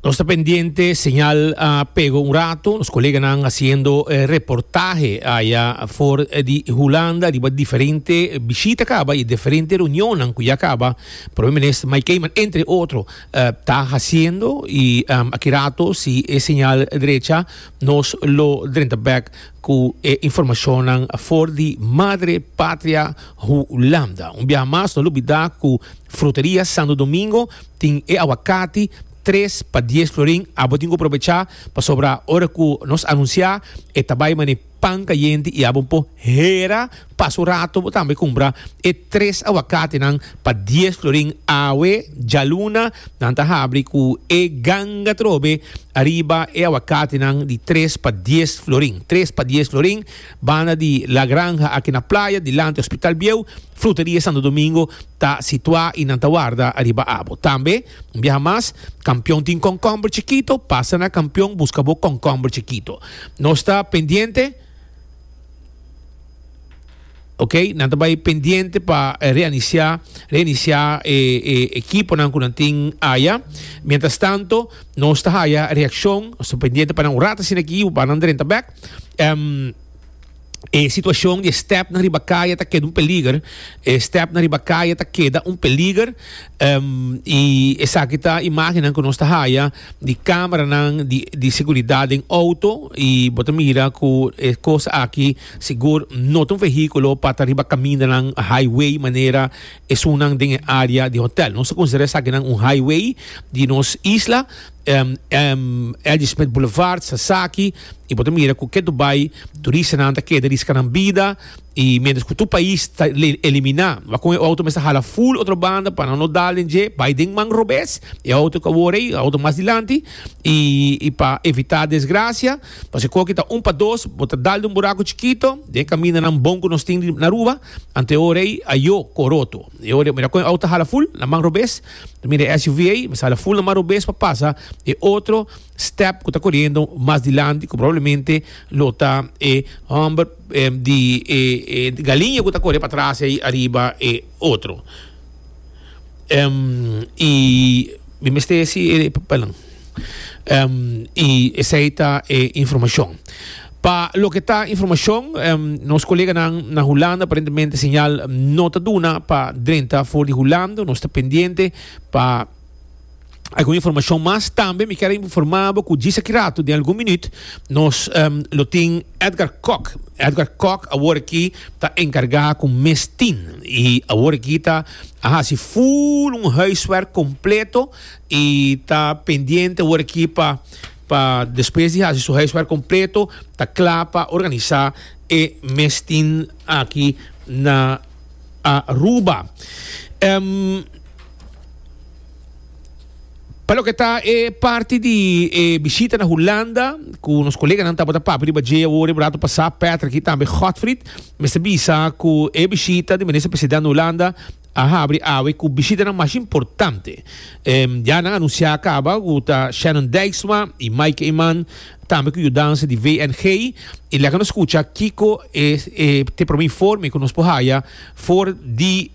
Nos ta pendiente señal a pego un rato nos coleganan haciendo eh, reportaje allá for eh, di Hulanda riba diferente visita caba y diferente reunionnan cu ya caba primer minister Mike Keiman entre otro eh, ta haciendo y em, aki rato si e señal drecha nos lo drenta back cu e informacionnan for di Madre Patria Hulanda. Un biaha mas, no lubida cu Fruteria Santo Domingo tin e awakati tres pa dies florin. Abo tin cu probecha, pasobra ora cu nos anuncia e ta bay mane pan cayente y abo un po hera. Pas un rato bo tambe kumpra e tres aguakatinan pa dies florin. Awe djaluna nan ta habri ku e ganga trobe ariba e aguakatinan di tres pa dies florin. Tres pa dies florin banda di La Granja aki na playa dilanti Hospital Bieu. Fruteria Santo Domingo ta situá i nan ta warda ariba abo. Tambe un biaha mas Kampion tin kònkòmber chikito, pasa na Kampion buska bo kònkòmber chikito. Nos ta pendiente. Ok, nan ta bai pendiente pa reiniciá, reiniciá e, e equiponan cu nan tin aya. Mientras tanto, nos ta haya reaccion, nos ta pendiente pa nan un rato sin aquí, pa nan drenta back. Em, e situacion di e step na riba kaya ta keda un peliger. E step na riba kaya ta keda un peliger. Em, y esaki ta imagennan cu nos ta haya. di cameranan di di seguridad den auto y bo ta mira cu e cos aki sigur no ta un vehiculo pa ta riba camindanan highway manera esunnan den e area di hotel nos ta considera esakinan un highway di nos isla L.G. Smith Boulevard sasaki y bo ta mira cu kendo bay turistanan ta keda riskanan bida. I miéntras ku tur pais ta eliminá kon e outo mester hala ful otro banda pa nan no dal den dje bai den man robes e outo ku awor ei outo mas dilanti i pa evitá desgrasia pasobra ku aki ta un pa dos bo ta dal den un buraku chikito den e kamindanan bon ku nos tin riba na Aruba anto e ora ei ayo ko roto e ora ei mira kon e outo ta hala ful na man robes ta mira e SUV ei mester hala ful na man robes pa pasa e otro step ku ta koriendo mas dilanti ku probablemente lo ta e hòmber. di e galiña ku ta kore pa tras ei ariba e otro i mi mester si e papel nan i esei ta e informashon pa loke ta informashon nos koleganan na Hulanda aparentemente señal no ta duna pa drenta for di Hulanda nos ta pendiente pa. Algun informashon mas tambe mi kier a informa bo ku djis aki ratu den algun minüt nos em, lo tin Edgar Kok. Edgar Kok awor aki ta enkargá ku mes tin i awor aki ta a hasi full un huiswerk kompleto i ta pendiente awor aki pa pa despues di hasi su huiswerk kompleto ta kla pa organisá e mes tin aki na Aruba. Em Pa loke ta e parti di e bishita na Hulanda, ku nos koleganan tabata papia riba dje awor i brato pasá, Patrick i tambe Godfried mester bisa ku e bishita di Minister Presidente na Hulanda a habri awe ku bishitanan mas importante. Ya nan anunsiá kaba ku ta Shannon Dijksma i Maaike Eman, tambe ku yudansa di VNG. I laga nos skucha kiko e te promé informe ku nos por haya for di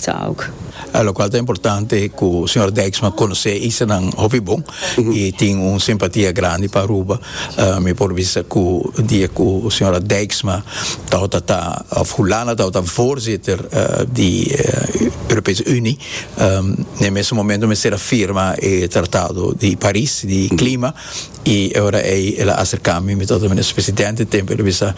Talk. Lokual ta importante ku señor Dijksma konosé Easternan hopi bon i tin un simpatia grandi pa Aruba. Mi por bisa ku dia ku señora Dijksma tabata ta òf Hulanda tabata voorzitter di Europese Unie, na e mesun momentu mester a firma e tratado di Paris di klima y e ora ey el a acercami mi tata minister presidente tempo el a bisa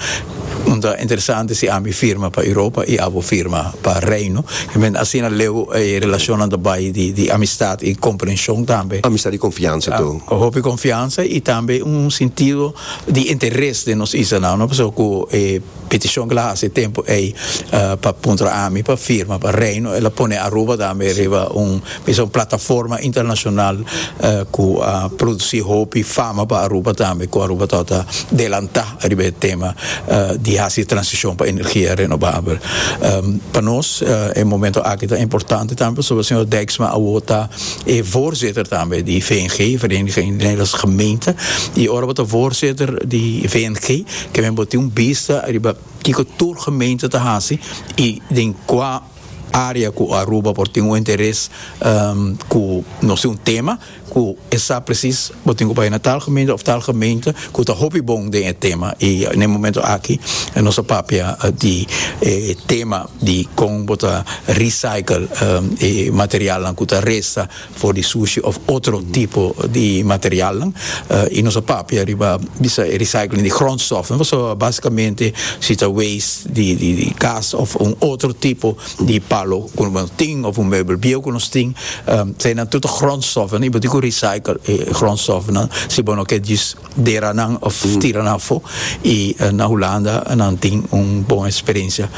un ta interesante si ami firma pa Europa y abo firma pa Reino men asina leu e relacionnan ta bay di di amistad y comprension tambe. Amistad y confiansa to. Cu hopi confiansa y tambe un sentido di interes den nos isanan no pasobra cu e Peticion kila hasi e tempo ey pa puntra ami pa firma pa Reino el a pone Aruba tambe riba un bisa un plataforma internacional cu a produci hopi fama pa Aruba tambe cu Aruba ta ta delanta riba e tema di hasi transicion pa energia renovabel pa nos e momento aki ta importante tambe pasobra señor Dijksma awor ta e voorzitter tambe di VNG Vereniging Nederlandse Gemeenten y ora bo ta voorzitter di VNG Tambe bo tin un bista riba kiko tur gemeente ta hasi y den cua area cu Aruba por tin un interes cu no si un tema cu e sa precies bo tin cu bay na tal gemeente of tal gemeente cu ta hopi bon den e tema y na e momento aki nos a papia di e tema di con bo ta recycle e materialnan cu ta resta for di sushi of otro tipo di materialnan y nos a papia riba bisa e recycling di grondstofnan paso basicamente si ta waste di di cas of un otro tipo di palo cu no bo tin of un meubel bieuw cu nos tin ta e nan tur ta grondstofnan y bo tin cu recycle e grondstofnan si bo no ke djis dera nan of tira nan afo y na Hulanda nan tin un bon experiencia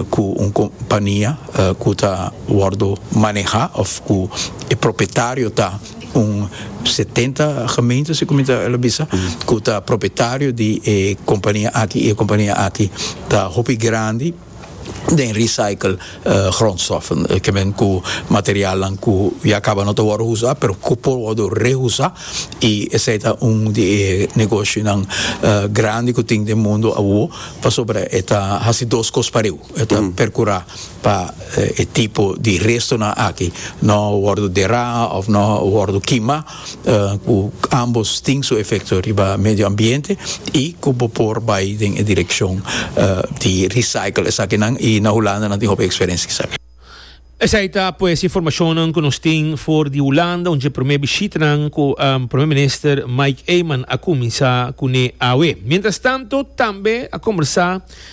cu un compania cu ta wordo maneha of cu e propietario ta un setenta gemeente si cu mi ta bisa cu ta propietario di e compania aki y e compania aki ta hopi grandi. den recycle grondstoffen ke men ku materialnan ku ya kaba no ta wòrdu usa pero ku por wòrdu reusa i esei ta un di e negoshinan grandi ku tin den mundu awo pasobra e ta hasi dos kos pariu e ta perkurá pa e tipo di restonan aki no wòrdu derá òf no wòrdu kimá. ku ambos tin su efekto riba medio ambiente i ku bo por bai den e direkshon di recycle esakinan i na Hulanda nan tin hopi eksperensia esaki. Esei ta pues e informashonnan ku nos tin for di Hulanda un dje promé bishitanan ku Promé Minister Mike Eman a kuminsá kuné awe. Mientras tanto tambe a kombersá.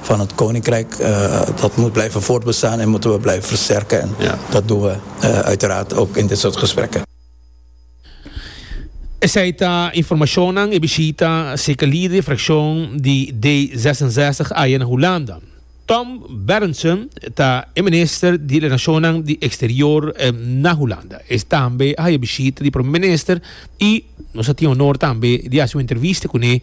Van het koninkrijk dat moet blijven voortbestaan en moeten we blijven versterken en dat doen we uiteraard ook in dit soort gesprekken. Esei ta informashonnan e bishita seke lider di frakshon di D zesenzestig aya na Hulanda. Tom Berendsen ta e minister di Relashonnan di Eksterior na Hulanda. E tambe a haya bishita di Prome Minister i nos a tin honor tambe di hasi un entrevista kuné.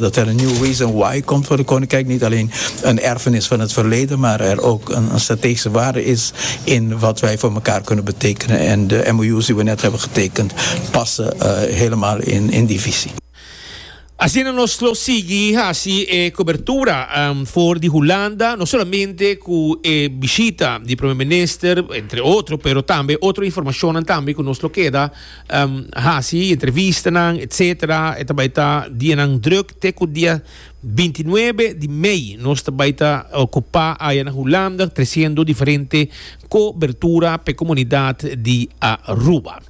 Dat er een nieuwe wezen why komt voor de koninkrijk niet alleen een erfenis van het verleden maar er ook een strategische waarde is in wat wij voor mekaar kunnen betekenen en de MOU's die we net hebben getekend passen helemaal in die visie. Asina nos lo sigui haci e cobertura for di Hulanda, no solamente cu e bishita di Primer Minister, entre otro, pero tambe otro informacionnan tambe cu nos lo keda hasi entrevistanan etc. E ta bai ta dianan druk te ku dia binti nuebe di mei. Nos ta bai ta okupá aya na Hulanda tresiendo diferente kobertura p'e komunidat di Aruba.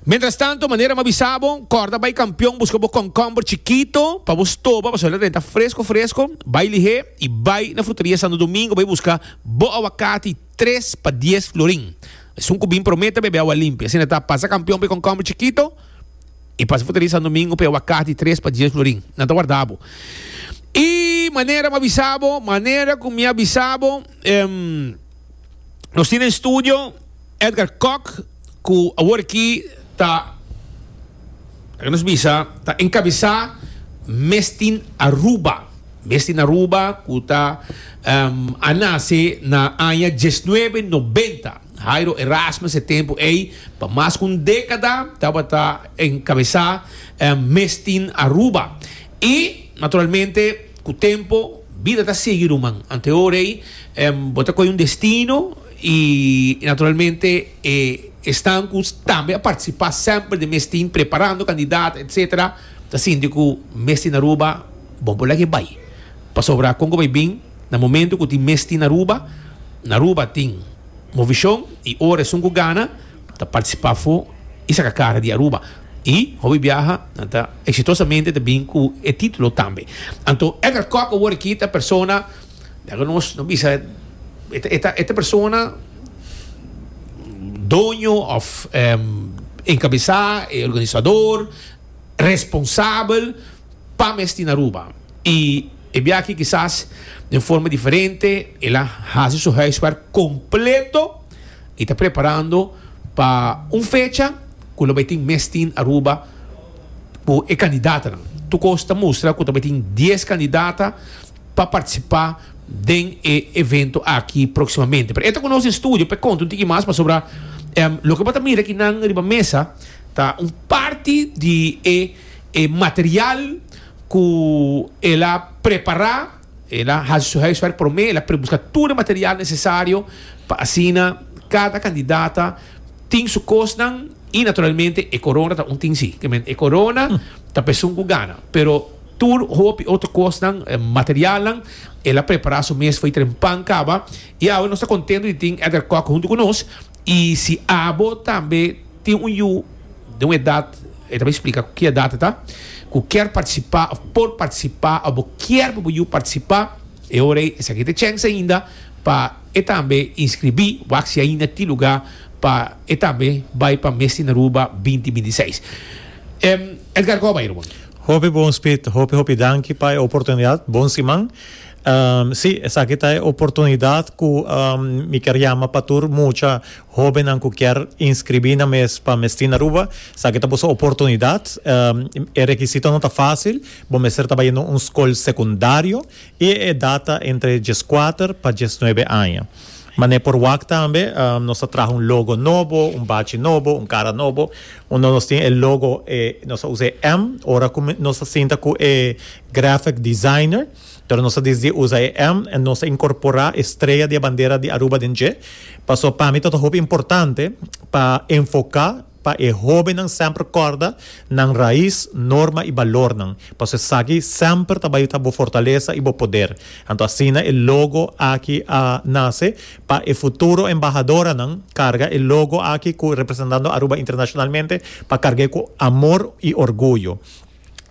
Mientrastanto, manera m'ha bisa bo, kòrda bai kampion buska bo kònkomber chikito pa bo stoba pasobra e ta renta fresko fresko. Bai lihé i bai na Fruteria Santo Domingo bai buska bo awakati. Tres pa dies florin. Esun ku bin prome ta bebe awa limpi. Asina ta, pasa kampion p'e konkomber chikito i pasa futari sandomingo p'e awakati tres pa dies florin. Nan ta warda bo. I manera mi a bisa bo, manera ku mi a bisa bo, em, nos tin den studio Edgar Kok, ku awor aki ta. Laga nos bisa ta encabesá Mes tin Aruba. Mes tin Aruba cu ta a nace na aña diesnuebe nobenta. Jairo Erasmus e tempu ey pa mas cu un decada tabata encabesá Mes tin Aruba. Y naturalmente cu tempo bida ta sigui ruman. Antehoray bo ta coge un destino y naturalmente. E esnan ku tambe a partisipá semper den mes tin preparando kandidat etsetera ta sinti ku mes tin Aruba bon por leke bai pasobra kon ku bai bin na momento ku tin mes tin na Aruba na Aruba tin movishon i ora esun ku gana ta partisipá afó i saka kara di Aruba i hopi biaha nan ta eksitosamente ta bin ku e titulo tambe anto Edgar Kok awor aki ta e persona Dja cu nos no bisa e ta persona doño of encabesa e organisador responsabel pa mesti na Aruba. Y e bia aki kisas den forma diferente el a haci su huiswerk completo y ta preparando pa un fecha cu lo bay tin mes tin Aruba cu e candidatanan. Tur cos ta mustra cu ta bay tin dies candidata. pa participa den e evento aki proximamente. Pero e ta cu nos den studio p'e conta un tiki mas pasobra loke bo ta mira aki nan riba mesa ta un parti di e e material cu el a prepara, el a haci su huiswerk prome, el a prebusca tur e material necesario pa asina cada candidata tin su kosnan i naturalmente e korona ta un tin si ke men e korona ta pesun ku gana pero tur hopi otro kosnan materialnan el a prepara su mes for i tren pan kaba i awe nos ta kontento di tin Edgar Kok huntu ku nos i si abo tambe tin un yu den un edat e ta bin splika ku ki edat e ta ku kier partisipa òf por partisipa òf bo kier pa bo yu partisipa e ora ei esaki ta e chèns ainda pa. E tambe inskribí wak si ainda tin lugá pa e tambe bai pa Mesti n'Aruba binti binti seis. Edgar Coba i rubon. Hopi bon Speed, hopi hopi danki pa e oportunidat, bon siman. Sí, esaki ta e oportunidat ku mi kier yama pa tur mucha hobennan ku kier inskribí nan mes pa Mesti n'Aruba. Esaki ta boso oportunidat. E rekisitonan ta fásil, bo mester ta bai un skol sekundario I e edat ta entre dieskuater pa diesnuebe aña. Manera por wak tambe nos a traha un logo nobo, un bachi nobo, un kara nobo. Unda nos tin e logo e nos a usa e M ora ku nos a sinta ku e graphic designer. Pero nos a desidi usa e M en nos a inkorporá e strea di e bandera di Aruba den dje. Pasobra pa mi ta hopi importante pa enfoká Pa e hóbennan semper kòrda nan rais, norma i balornan, pasobra esaki semper ta bai ta bo fortalesa i bo poder. Anto asina e logo aki a nase. Pa e futuro embahadoranan karga e logo aki ku representando Aruba internashonalmente pa karg'é ku amor i orguyo.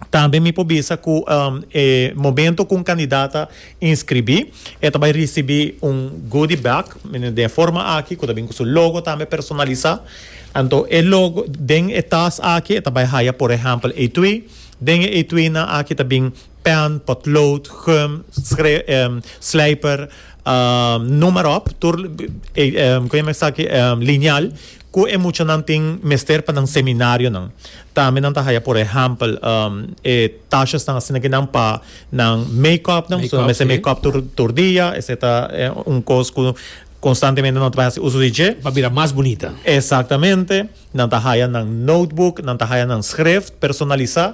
Tambe mi por bisa cu e momento cu un candidat a inscribi e ta bay ricibi un goodie bag den e forma aki cu ta bin cu su logo tambe personalisa anto e logo den e tas aki e ta bay haya por ehempel etui den e etuinan aki ta bin pen, potlood, gum, slijper, noem maar op tur kico e men esaki lineal Cu e muchanan tin mester pa nan seminarionan? Tambe nan ta haya por ehempel e tashasnan asina ki nan pa nan make-upnan, pasobra nan mester make-up tur tur dia, esey ta un cos cu constantemente nan ta bay haci uso di dje. Pa bira mas bunita. Exactamente. Nan ta haya nan notebook, nan ta haya nan schrift personalisa.